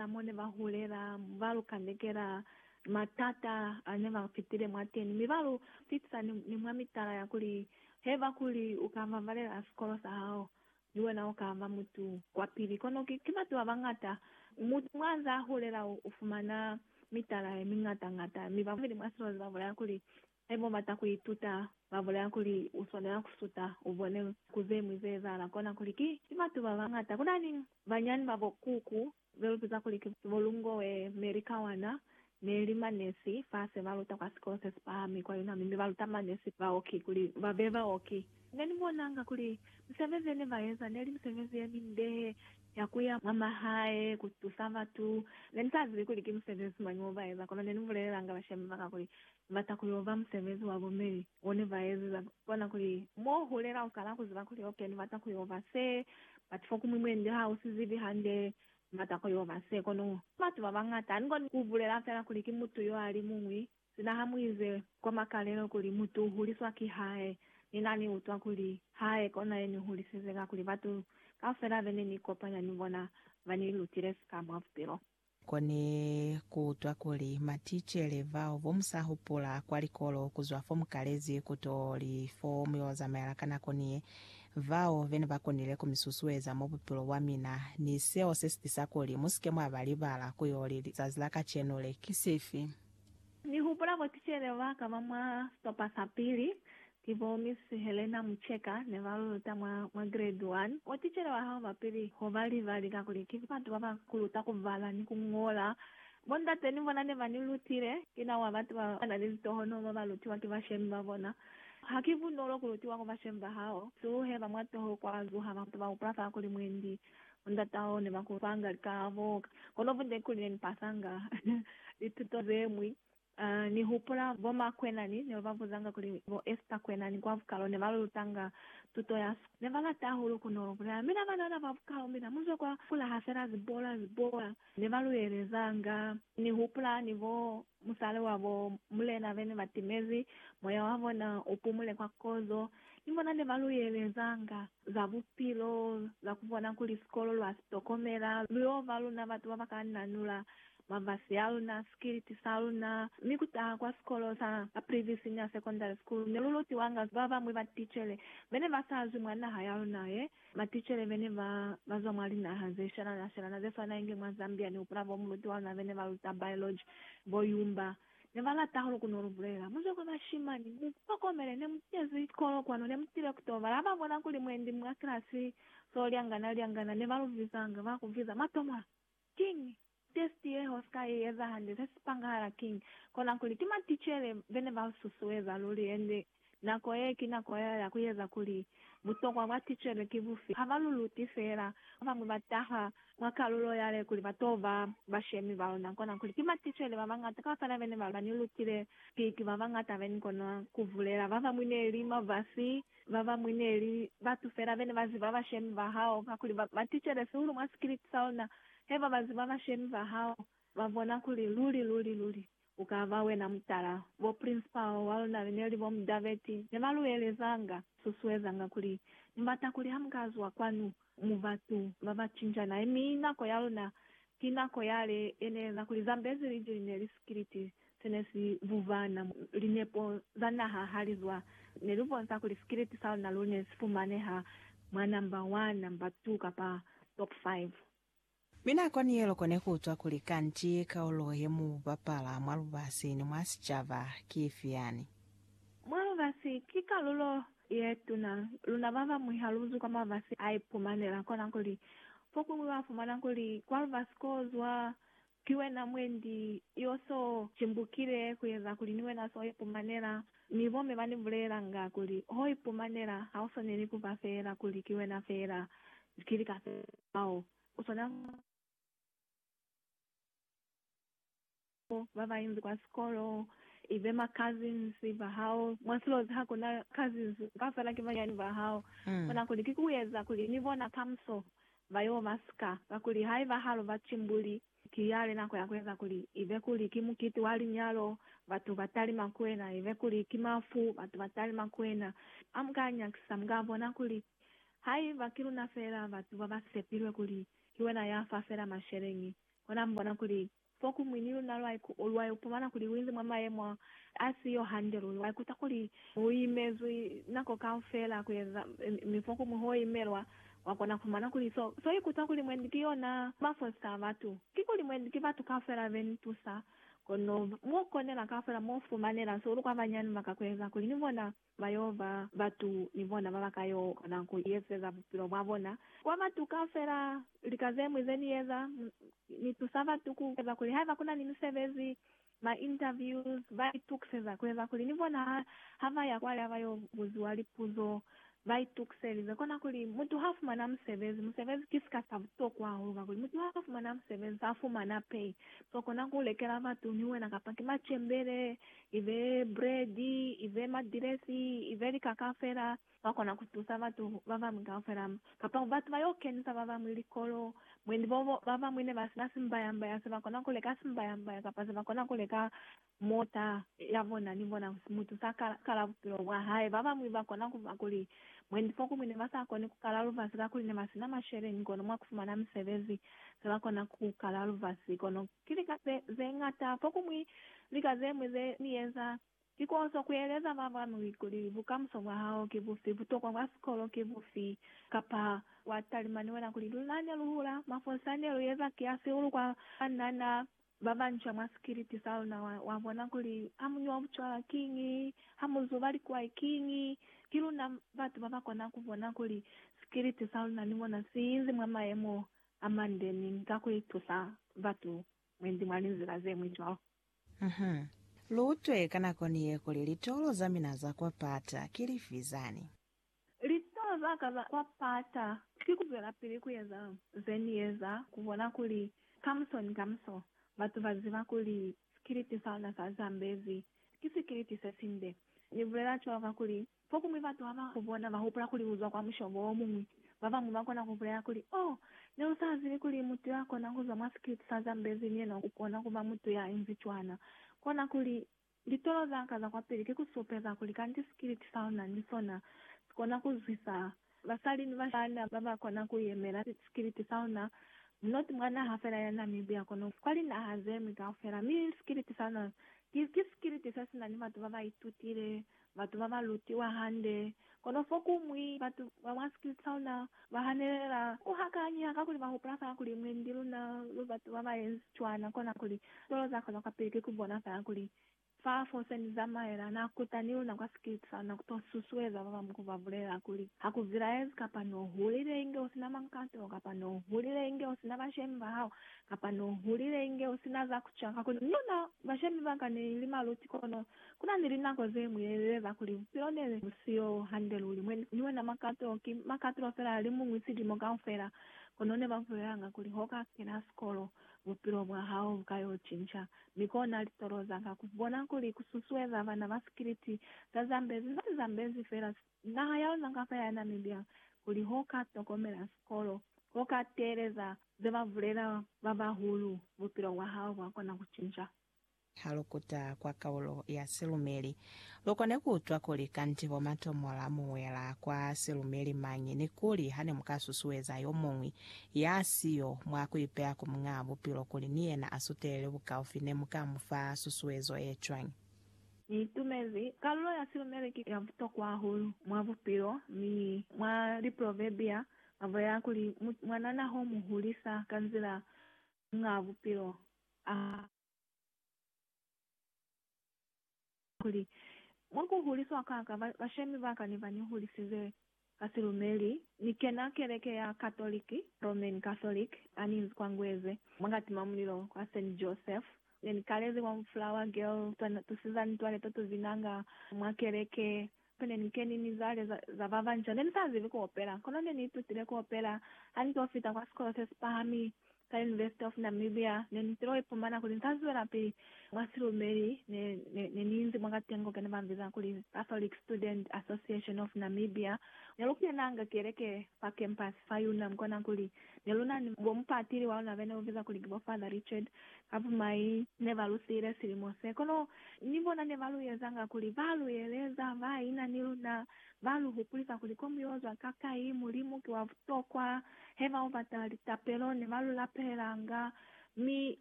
Ka mo ne ba hulela, ba lu kandekela matata a ne ba fitile mwateni, mi ba lu pitisa ni, ni mwa mitala ya kuli, Haiba kuli u ka ba valela sikolo sa hao, ni wena u ka ba mutu wa pili. Kono ki, ki batu ba bañata. Mutu mwa nze a hulela u, u fumana mitala ye miñata-ñata, mi ba babeli mwa silozi ba bulaya kuli, Haiba ubata kuituta, babulela kuli uswanela kusuta ubone ku zeñwi zeezahala kona kuli ki batu babañata kunani banyani babo kuku belupeza kuli ki bo Lungoe, Mary Kawana, neli manesi fase baluta kwa sikolo sesipahami kwa UNAMI mi baluta manesi baoki kuli babe baoki. Neni bonanga kuli misebezi yene baeza neli misebezi yeminde ya kuya mwa mahae kutusa batu. Neni sazibi kuli ki musebezi mañi obaeza kono neni bulelelanga bashemi baka kuli Bata kuli uba musebezi wa bo meli one ba ezeza bona kuli mo hulela ukana kuziba kuli ok ni bata kuyo ba se but fo kumwi mwe ndi ha usi zibi hande ni bata kuyo ba se kono batu ba bangata ani koni ku bulela fela kuli ki mutu yo ali muñwi sina ha mu ize kwa makalelo kuli mutu u huliswa ki hae ni na ni utwa kuli hae kona ye ni hulisize kakuli batu kaufela bene ni kopanya ni bona ba ni lutile sika mwa bupilo Kone kuutwa kuli maticele bao bo musa hupula kwa likolo kuzwa fo mukalezi kuto li fo muyo zamaela ka nako niye, bao bene ba konile ku misusueza mwa bupilo bwa mina, ni seo se sitisa kuli musike mwa ba libala kuyo li lizazi la kacenu le. Ki sifi? Ni hupula bo ticele baka ba mwa stopa sa pili, Ki bo Miss Helena Mucheka ne ba lu luta mwa, mwa grade one. Mwa ticele wa hao ba pili ho ba li, ba li ka kuli, Ki batu ba ba ku luta ku bala ni ku ñola. Bo ndate ni bona ne ba ni lutile. Ki na wa batu ba ba na ni litohonoho ba ba lutiwa ki bashemi ba bona. Ha ki bunolo ku lutiwa ku bashemi ba hao. Suluhe ba mwa toho kwa zuha batu ba hupula fa kuli mwendi bo ndata hao ne ba ku fanga lika bo, kono bunde kuli ne ni pasanga lituto ze ñwi Ha ni hupula bo ma kwenani neo ba buzanga kuli bo Esther kwenani kwa bukalo ne ba lu lutanga tuto ya sikolo. Ne ba lata hahulu ku no lu bulela. Mina banana ba bukalo, mina mu zwe kwa kula ha fela zibola, zibola ne ba lu elezanga. Ni hupula ni bo musali wa bo mulena be ne ba timezi, moya wa bona u pumule kwa kozo. Ni bona ne ba lu elezanga za bupilo, za ku bona kuli sikolo lwa si tokomela, lu yo ba luna batu ba ba ka nanula mavasi a luna, sikiliti sa luna, mi ku taha kwa sikolo sa Aprivi Senior Secondary School ne lu lutiwanga ba bañwi ba ticele be ne ba sa zwi mwa naha ya luna ye, maticele be ne ba ba zwa mwa linaha ze shelana-shelana ze swana inge mwa Zambia ni hupula fo muluti wa luna be ne ba luta biology, bo Yumba, ne ba lata hahulu ku no lu bulela, Mu zwe kwa bashimani, mu hlokomele, ne mu kezi sikolo kwanu, ne mu tile ku to bala. Ha ba bona kuli mwendi mwa kilasi so lyangana-lyangana, ne ba lu vizanga, ba ku viza, Matomola! Kiñi test ye hoska ye eza hande? Se si pangahala kiñi? Kona kuli ki maticele bene ba u susueza luli, hande nako ye ki nako ya ya ku eza kuli butokwa bwa ticele ki bufi. Ha ba lu luti feela. Ba bañwi ba taha mwa kalulo yale kuli ba to ba bashemi ba luna. Kona kuli ki maticele ba bañata kaufela bene ba ni lutile, ki ba bañata beni kona ku bulela ba bañwi neli mafasi Babañwi neli batu fela bene baziba bashemi bahao, kakuli ba baticele sihulu mwa sikiliti saona. Haiba baziba bashemi bahao, babona kuli luli, luli, luli ukaba wena mutala. Bo principal waluna beneli bo Mudaveti nebaluelezanga, susuezanga kuli, Mubata kuli hamukazwa kwanu, Mu batu ba ba cinjana, mi nako ya luna ki nako yale ye ne eeza kuli Zambezi liji li ne li sikiliti se ne si bubana. Linepo za naha ha li zwa, ne lu bonsa kuli sikiliti sa luna lu ne si fumaneha mwa namba 1, namba 2, kapa top 5. Mi nako ni ye loko ne ku utwa kuli kanti kaulo ye mu bapala mwa lubasi ni mwa sicaba ki ifi yani. Mwa lubasi ki kalulo ye tuna. Luna ba bañwi ha lu zwi kwa mabasi a ipumanela kona kuli fokuñwi wa fumana kuli kwa lubasi ko zwa Ki wena mwendi yo so cimbukile kueza kuli ni wena so ipumanela, mi bo me ba ni bulelanga kuli, Ho ipumanela ha u swaneli kuba feela kuli ki wena feela, ki lika feela bao u swanela ku ba nabo, ba ba inzi kwa sikolo, i be ma cousins ba hao, mwa silozi ha ku na cousins, kaufela ki banyani ba hao. U kona kuli ki kueza kuli ni bona kamuso Ba yo ba sika, kakuli haiba ha lu ba cimbuli, ki yale nako ya ku eza kuli, ibe kuli ki mukiti wa linyalo, batu ba talima ku wena, ibe kuli ki mafu, batu ba talima ku wena. Ha mu ka nyakisa, mu ka bona kuli haiba ki luna fela batu ba ba sepilwe kuli ki wena ya fa fela masheleñi, konamu bona kuli Fokumwi ni luna lwa ipumana kuli luinzi mwa mayemo a si yo hande luli. Wa ikuta kuli u imezwi nako kaufela kueza, mi fokumwi ho imelwa, wa kona kupumana kuli so, so ikuta kuli mwendi ki yona mafosi a batu. Kikuli mwendi ki batu kaufela be ni tusa, kono mo konela kaufela mo fumanela so lu kwa bañanu ba ka kueza kuli ni bona Ba yo ba batu ni bona ba ba ka yo kona ku ezeza bupilo bwa bona kuba butuka fela lika ze ñwi ze ni eza. Ni tusa batu ku eza kuli haiba ku na ni misebezi, ma interviews, ba itukiseza ku eza kuli ni bona ha, ha ba ya kwale ha ba yo buziwa lipuzo ba itukiselize. Kona kuli mutu ha fumana musebezi, musebezi ki sika sa butokwa hahulu kakuli mutu ha fumana musebezi, ha fumana pay. So kona ku lekela batu ni wena kapa ki macembele ibe buledi, ibe madilesi, ibe lika kaufela, ba kona ku tusa batu babañwi kaufela, kapa batu ba yo kenisa babañwi likolo. Mwendi bobo, babañwi ne ba sina simbaya-mbaya se ba kona ku leka simbaya-mbaya kapa se ba kona ku leka mota ya bona ni bona mutu sa kala, kala bupilo bwa hae. Babañwi ba kona ku fa kuli mwendi fokumwi ne ba sa koni ku kala lubasi kakuli ne ba sina masheleñi, kono mwa ku fumana misebezi se ba kona ku kala lubasi, kono Ki lika ze, ze ñata. Fokumwi, lika ze ñwi ze Ni eza, ki ku oso kueleza ba bañwi kuli bukamuso bwa hao ki bufi, butokwa bwa sikolo ki bufi, kapa wa talimani wena kuli luna ne lu hula, mafosi a ne lu eza ki a sihulu kwa banana ba banca mwa sikiliti sa luna, wa, wa bona kuli ha mu nwa bucwala kiñi, ha mu zuba likwai kiñi. Ki luna batu ba ba kona ku bona kuli sikiliti sa luna ni mona si inzi mwa mayemo Amande mi ka ku itusa batu mwendi mwa linzila ze ñwi cwalo. Uhum. Lu utwe ka nako ni ye kuli litolo za mina za kwa pata ki lifi zani? Litolo za ka za kwa pata ki ku zwelapili ku eza ze ni eza, ku bona kuli kamuso ni kamuso batu ba ziba kuli sikiliti sa luna sa zambezi ki sikiliti se sinde. Ni bulela cwalo kakuli Fokuñwi batu haba ku bona, ba hupula kuli uzwa kwa mushobo o muñwi. Babañwi ba kona ku bulela kuli, Oh, ne u sa zibi kuli mutu ya kona ku zwa mwa sikiliti sa Zambezi ni yena u kona ku ba mutu ya inzi cwana. Kona kuli, Litolo za ka za kwapili ki ku supeza kuli kanti sikiliti sa u na ni sona si kona ku zwisa Basali ni bashana ba ba kona ku yemela sikiliti sa ona, not mwa naha fela ya Namibia kono kwa linaha ze ñwi kaufela. Mi sikiliti sa ona ki, ki sikiliti se si na ni batu ba ba itutile, batu ba ba lutiwa hande. Kono fokuñwi batu ba mwa sikiliti sa ona ba hanelela ku hakanyiha kakuli ba hupula fela kuli mwendi luna lu batu ba ba yenzi cwana, kona kuli tolo za ka zwa kwapili ki ku bona fela kuli Fa fo se ni zamaela, Na kuta ni luna kwa sikiti sa luna ku to susueza ba bañwi ku ba bulelela kuli, Ha ku zilaezi, kapa n'o hulile inge u si na mankato, kapa n'o hulile inge u si na bashemi ba hao, kapa n'o hulile inge u si na za ku ca. Kakuli ni luna, bashemi ba ka, ne li maluti, kono ku na ni linako ze ñwi ne li eza kuli bupilo ne bu si yo hande luli. Mwe ni wena makato ki makatulo fela, li muñwi silimo kaufela. Kono ne ba bulelanga kuli ho ka kena sikolo. bupilo bwa hao bu ka yo cinca. Mi kona litolo za ka ku bona kuli ku susueza bana ba sikiliti za Zambezi ba Zambezi fela naha ya luna kapa ya Namibia kuli ho ka tokomela sikolo, ho ka teeleza ze ba bulela ba bahulu, bupilo bwa hao bwa kona ku cinca. Ha lu kuta kwa kaulo ya silumeli, lu kone ku utwa kuli kanti bo matomola mu wela kwa silumeli mañi ni kuli ha ne mu ka susueza yo muñwi ya si yo mwa ku ipeya ku Muñaa Bupilo kuli ni yena a sutelele bukaufi ne mu ka mu fa susuezo ye cwañi. Ni itumezi kaulo ya silumeli ki ya butokwa hahulu mwa bupilo, mi mwa Liproverbia ba bulela kuli, Mwanana ho mu hulisa ka nzila Muñaa Bupilo a Kuli, mwa ku huliswa ka ka, ba, bashemi ba ka ne ba ni hulisize ka silumeli. Ni kena keleke ya Katoliki, Roman Catholic, ha ni nzi kwa Ngweze, mwa kati mwa mulilo kwa Saint Joseph. Ne ni kalezi kwa Flower Girl, twa tusiza mitwale to tu binanga mwa keleke, Ku ne ni keni mizwale za ba banca. Ne ni sa zibi ku opela, kono ne ni itutile ku opela ha ni to fita kwa sikolo se si pahami sa University of Namibia. Ne ni tilo ipumana kuli ni sa zwelapili mwa silumeli ne ni inzi mwakatengo kene ba mbiza kuli Catholic Student Association of Namibia. Ne lu kenanga keleke fa campus fa Unam kona kuli ne lu na ni bo mupatili wa luna bene lu biza kuli ki bo Father Richard. Ka bumai ne ba lu siile silimo se, kono Ni bona ne ba lu ezanga kuli ba lu yeleza ba ina ni luna, ba lu hupulisa kuli ko mu yo zwa kakai, Mulimu ki wa butokwa. He ba yo batala litapelo ne ba lu lapelanga, mi